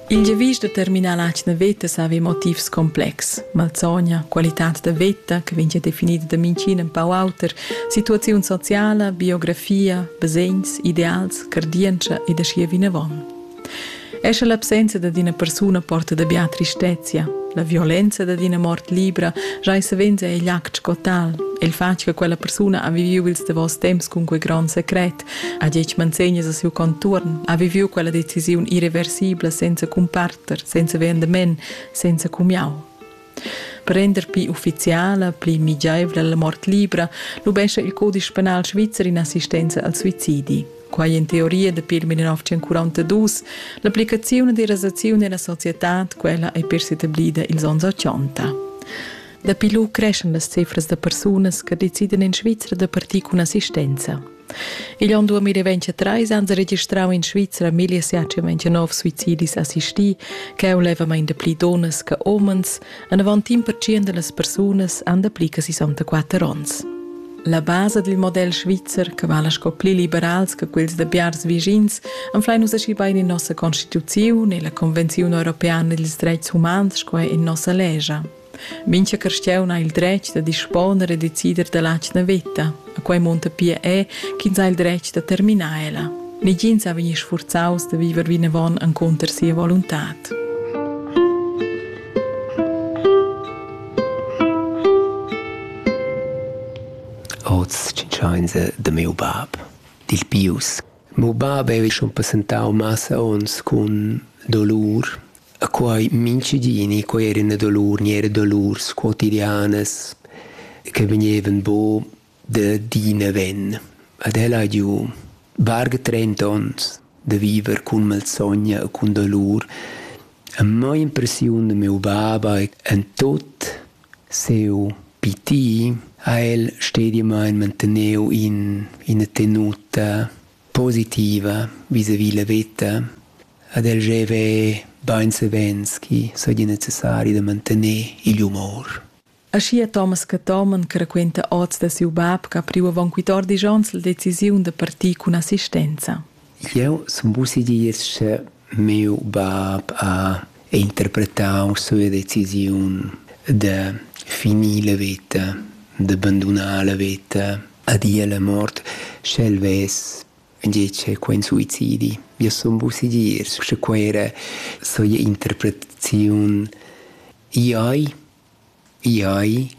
Il giavisch da terminar l'atgna veta savi motivs complexs. Malsogna, qualitad da veta che vegn definida da minchin en pau auter, situaziun sociala, biografia, basegns, ideals, cardientscha ed aschia vinavon. Esce l'absenza da d'ina persuna porta da bia tristezia, la violenza da d'ina mort libra giai savens è igl act sco tal, e il fatg che quella persuna ha viviu ils davos temps cun quei gron secret, ha detg manzegnas a siu contuorn, ha viviu quella decisiun irreversibla senza cumparter, senza vendement, senza cumiau. Per render pli ufficiala, pli migiaivla la mort libra, lubescha il codice penal svizzer in assistenza al suicidi. Quai in teoria dapi il 1942, l'applicazione della rasazione nella società, quella è per etablida ils anni 80. Dapi lu creschan las cifras da persunas che decidan en Svizra da partir cun assistenza. Igl onn 2023 han se registrau in Svizra 1729 suicidis assisti, che ei levamain da pli donnas che homens, en avant in percent delle persunas han dapli che 64 onns. La base dil model svizzer, che vala sco pli liberals che quels da biars vischins, anflein nus aschi bein in nossa constituziun e la Convenziun europeana dils dreits humans sco in nossa legia. Mincha carstiaun ha il dretg da disponer e decider dalla atgna veta. A quei munta pia è ch'ins ha il dretg da terminar ella. Negins ha vegni sfurzaus da viver vinavon encunter sia voluntad. Oz tschintschains da miu bab, dil Pius. Miu bab ei schon passentau massa onns cun dolur E quai mintgigini, quai eran dolur, niere dolurs quotidianas che vegnevan buca da d'ina ven. Ed ella ha giu varga trenta onns da viver cun malsogna e cun dolur. E mo impressiun da miu baba e en tut siu pitir ha el stediamain manteneu in ina tenuta positiva visavi la veta ed el gieva bain savens ch'i saja necessari da mantegnair igl umor. Aschia Thomas Cathomen che raquenta oz da siu bab che ha priu avon quattordisch onns la decisiun da partir cun assistenza. Jeu sun vussi dir che miu bab ha interpretau sua decisiun da finir la veta, da bandunar la veta a dir la mort, sch'el vess tgei che quei suicidi. Io sun bu segir, sche quei era soia interpretaziun. Iai, iai,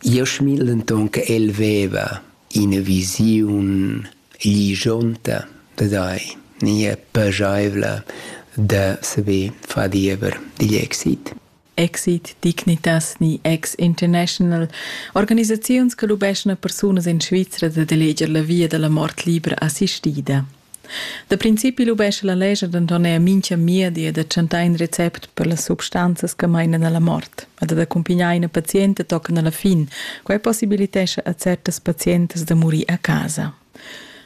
io schmil denton che el veva ina visiun lijonta da dai, nia pageivla da saver far diever digl exit. exit dignitas ni ex-international, organisaziuns che lubeschan a persunas en Svizra dad eleger la via dalla mort libra assistida. Da principi lubescha la leger denton er mincha miedi da chantar in recept per las substanzas che mainan alla mort ed da accumpignar ina pazienta tochen alla fin. Quei possibilitescha a certas pazientas da murir a casa.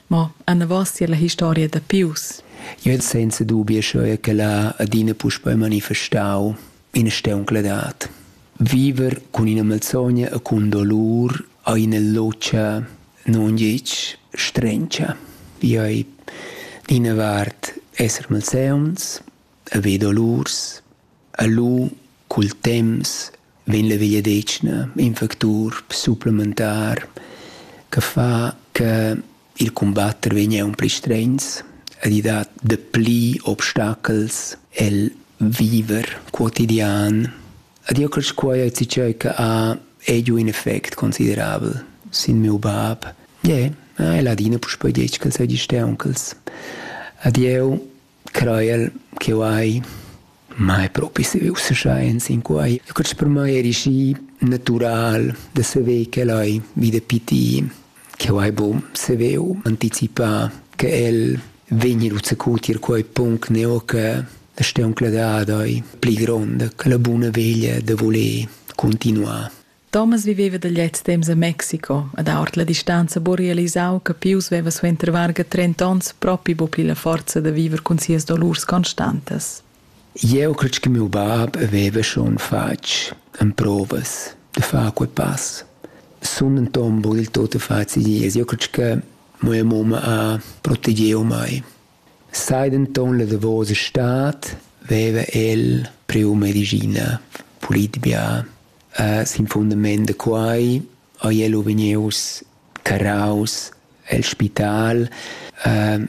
Ma anavos tier la historia da Pius. Io het senza dubi scheu che la adina puspei manifestau ina steuncladat. Viver cun ina malsogna e cun dolur a ina locia non gitg strencia. Io ei d'ina vart esser malseuns, haver dolurs, E lu cul temps vegn la vegliadetgna in factur supplementar che fa che il cumbatter vegn aunc pli stregns ed i dat dapli obstachels el viver quotidian. Ed io cresch quai a tgei che ha ei giu in effect considerabel sin miu bab. Ie, el ha adina puspei detg ch'el seigi steunchels. Ed jeu Crajel ch'eu hai mai propi savü ussa scha ins in quai. Quest per mai eri schi natüral da saver ch'el hai vi da pitir, ch'eu hai bu saveu anticipà che el vegni ruzzecù tier quai punct neo che la steuncladad hai pli gronda, che la buna veglia da voler cuntinuar. Thomas viveva da gliez temps a Mexico ed ha ord la distanza buc realisau che Pius veva suenter varga trenta onns propi buc pli la forza da viver cun sias dolurs constantas. Eu cred che miu bab aveva schon fatg emprovas da far quei pass. Sun in tombo il tot a face dies. Eu cred che mia mamma ha protegiu mai. Sai denton la davosa stad veva el priu medischina, pulitbia, sin fundament da quei ei el u vegnius carraus el spital.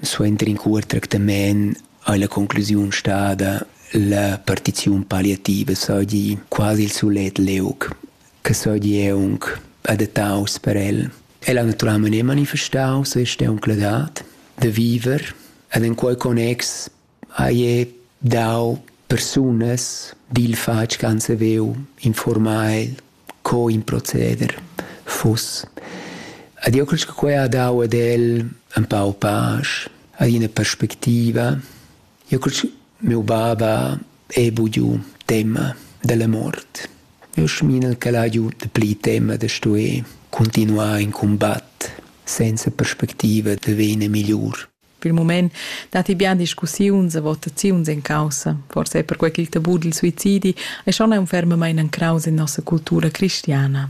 Suenter in cuort tractament ei la conclusiun stada la partiziun palliativa seigi quasi il sulet liug che seigi aunc adattaus per el. El ha naturalmein e manifestau sia steuncladad da viver ed en quei connex haie dau persunas dil fatg che han saveu informar el co in proceder fuss. Ed io cresch che quei ha dau ad el empau pasch, ad ina perspectiva Io cul miu baba he bugiu tema della mort. Io schmina ch'el haju dapli tema da stuer continuar in combatt senza perspectiva da vegnir migliur. Pil mument datti bien discussiuns e votaziuns en caussa, forse per quei ch'il tabù dil suicidi è schon un fermamain en craus en nossa cultura cristiana.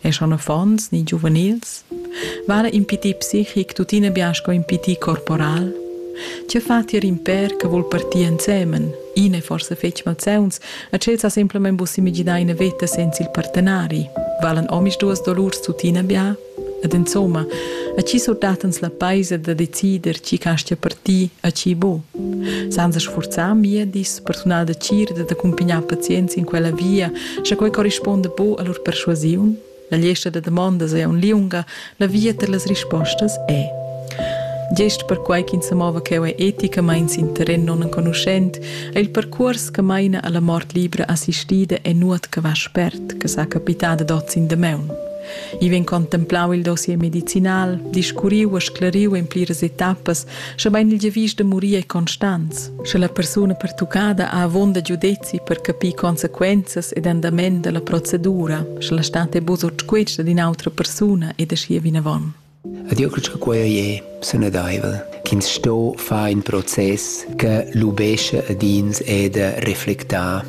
e schon affons ni giuvenils, vala impitir psichic tuttina bien sco impitir corporal? Tge fa tier in per che vul partir ensemen, ina forse fetg malzeuns, a tschel sa simplement bus imaginar ina veta senza il partenari? Valen omisduas dolurs tuttina bia? Ed insomma, a chi surdatens la paisa da decider chi castia partir a chi bo? Senza sforzar mia dis personal da cir da accumpignar pazients in quella via Sche quei corrispunda bu a lur perschuasiun, la gliesta da damondas ei aunc liunga, la via per las rispostas è. Gest perquai ch'ins sa mova cheu ei eticamein sin terren nonenconuschent, ei il percuors che meina alla mort libra assistida e nuot che va spert, che sa capitar dad oz in damaun. I vegn contemplau il dossier medicinal, discurriu e scleriu en pliras etappas Schebein il giavisch da murir è constants, sche la persuna pertuccada ha avon da giudezi per capir consequenzas ed andament dalla procedura, sche la stat è buca sutquesta d'in autra persuna ed aschia vinavon. Ed io credo che quei è sanadaivel, ch'ins sto far in proces che lubesce ad ins e da reflectar.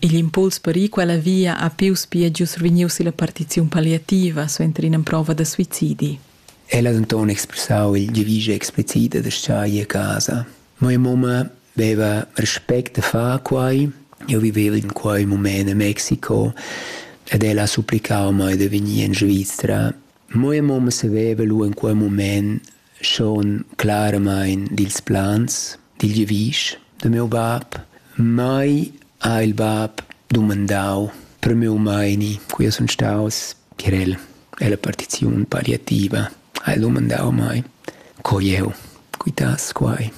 Igl impuls per ir quella via ha più spia gius vegniu silla partiziun palliativa suenter ina prova da suicidi. El ha denton expressau il giavisch explicit da schai a casa. Mia mumma veva respect da far quei. Jeu vivev in quei mument a Mexico ed ella ha supplicau mei da vegnir en Svizra. Mia mamma saveva lu in quei mument schon claramain dils plans, dil giavisch da miu bab. Mai ha il bab dumandau per miu meini, cui sun staus per el. Ella partiziun palliativa ha el uman dau mai. Co jeu quitass quai?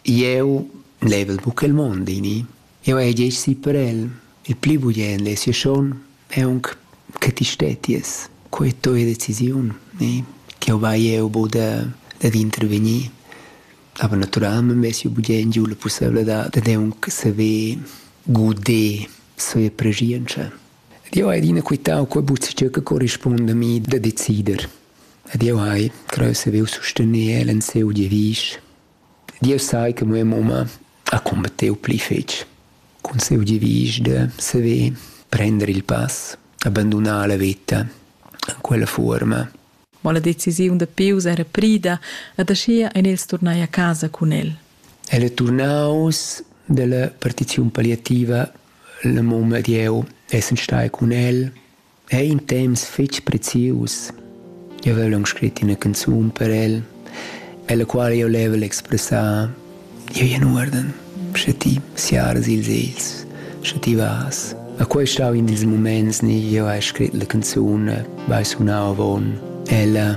Jeu level buca il mond ini. Jeu hai gest gì per el. Il pli bugien lessi schon è aunc che ti stetties. Quei è tua decisiun, ni? Ch'jeu vai jeu bu da, dad intervegnir. Aber naturalment vess jeu bugien giu la pusseivladad dad aunc saver guder sia preschientscha. Ed jeu hai adina quitau quei buzzetg che corrispunda a mi da decider. Ed jeu hai creu saviu sustener el en siu giavisch. Dieus sai che mia mumma ha combattiu pli fetg cun siu giavisch da saver prender il pass, abandunar la veta en quella fuorma. Ma la decisiun da Pius era prida ed aschia ein els turnai a casa cun el. El è turnaus dalla partiziun palliativa Il mum ed jeu essan stai cun el ei in temps fetg prezius. Jeu vevel aunc scrit ina canzun per el, ella quala jeu level expressar jeu in uorden, sche ti siaras ils egls, sche ti vas. A quei stau in dils muments ni jeu hai scrit la canzun, vai sunau avon ella.